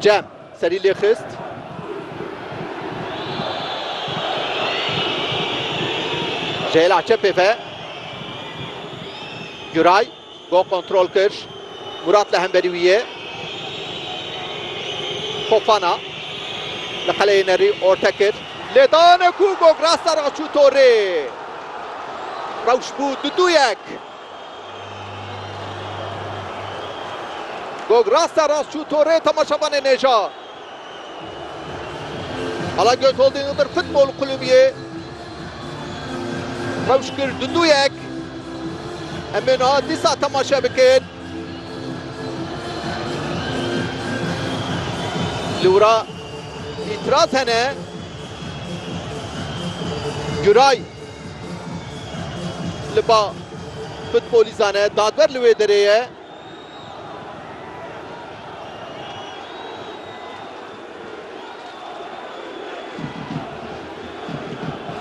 Cem serî lê xist. Jeyla çepê ve. Güray go kontrol kir. Murat li hemberî wî ye. Fofana li qeleyê nerî orte kir. Lê dane ku Gograsa re çû torê. Rewş bû du duyek. Gog rasta rast çû torê temaşevanê nêja. Alagöz Holding Iğdır Futbol Kulübiyê rewş kir du du yek. Em ê niha dîsa temaşe bikin. Li wira îtiraz hene. Güray li ba futbolîzan e. Dadwer li wê derê ye.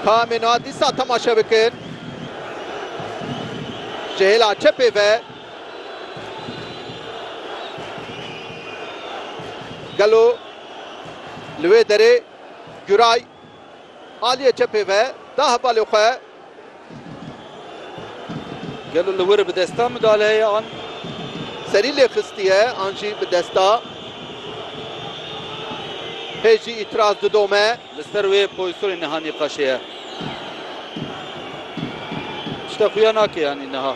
Kamena dîsa temaşe bikin. Ji hêla çepê ve gelo li wê derê Güray Aliyê çepê ve da hevalê xwe. Gelo li wir bi desta midale heye an. Serî lê xistiye an jî bi desta. Hê jî îtiraz didome. Li ser wê poysonê niha nîqaşê ye. Tişta xuya nake yanî niha.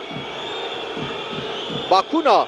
Bakûna.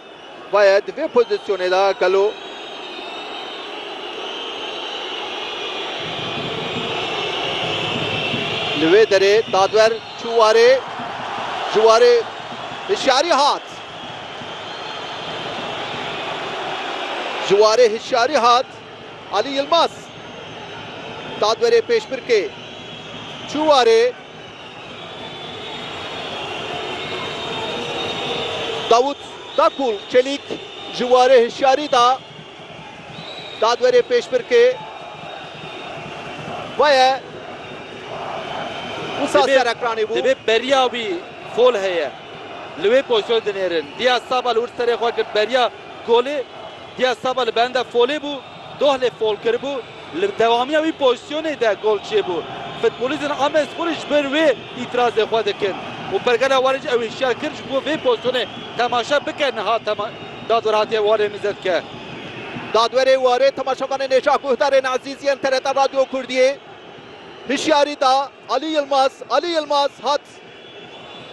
Vaye di vê pozîsyonê de gelo li wê derê dadwer çû warê ji warê hişyarî hat. Ji warê hişyarî hat Alî Yilmaz. Dadwerê Pêşbirkê çû warê. Davut Dakul Çelîk ji warê hişyarî da dadwerê pêşbirkê xwe ye. Wisa serekranî bû. Divê beriya wî fol heye. Li wê pozîsyonê dinêrin. Diyaz Saba li wir serê xwe girt beriya golê. Diyaz Saba li benda folê bû. Dohlê Folker bû, li dewamiya wî pozîsyonê de gol çêbû. Futbolîstên Amedsporê ji ber wê îtîrazê xwe dikin û pergala warê jî ew hişyar kir ji bo vê pozîsyonê temaşe bike niha dadwer hatiye warê mizetke. Dadwerê warê temaşevanê Nêşa Guhdarên Ezîzî yên TRT Radyo Kurdiyê hişyarî da Alî Yilmaz. Alî Yilmaz hat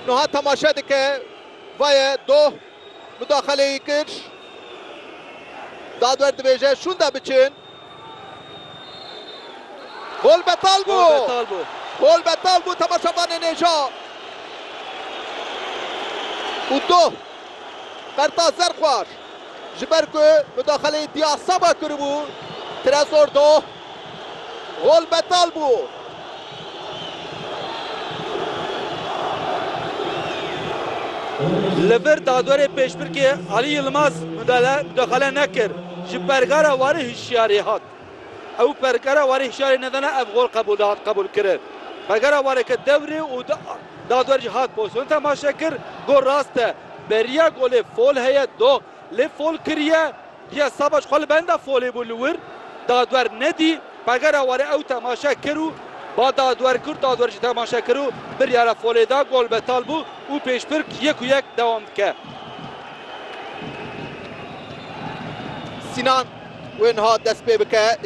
niha temaşe dike, va ye doh. Mudaxaleyî kir. Dadwer dibêje şûnde biçin. Gol betal bû. Gol betal bû temaşevanê nêja. Û doh Qerta Zerxwar ji ber ku mudaxaleyî Diasaba kiribû, Trezor doh. Gol betal bû. Li vir dadwerê pêşbirkê Alî Yilmaz mudaxale nekir, ji pergara warê hişyarî hat. Ew pergara warê hişyarî nedana ev gol qebûl dihat qebûlkirin. Pergara warê ket dewrê û dadwer jî hat pozîsyonê temaşe kir. Gol rast e. Beriya golê fol heye doh. Lê fol kiriye. Giya Savaş xwe li benda folê bû li wir dadwer nedî. Pegera warê ew temaşe kir û ba dadwer kir. Dadwer jî temaşe kir û biryara folê da. Gol betal bû û pêşbirk yek û yek dewam dike. Sinan wê niha dest pê bike.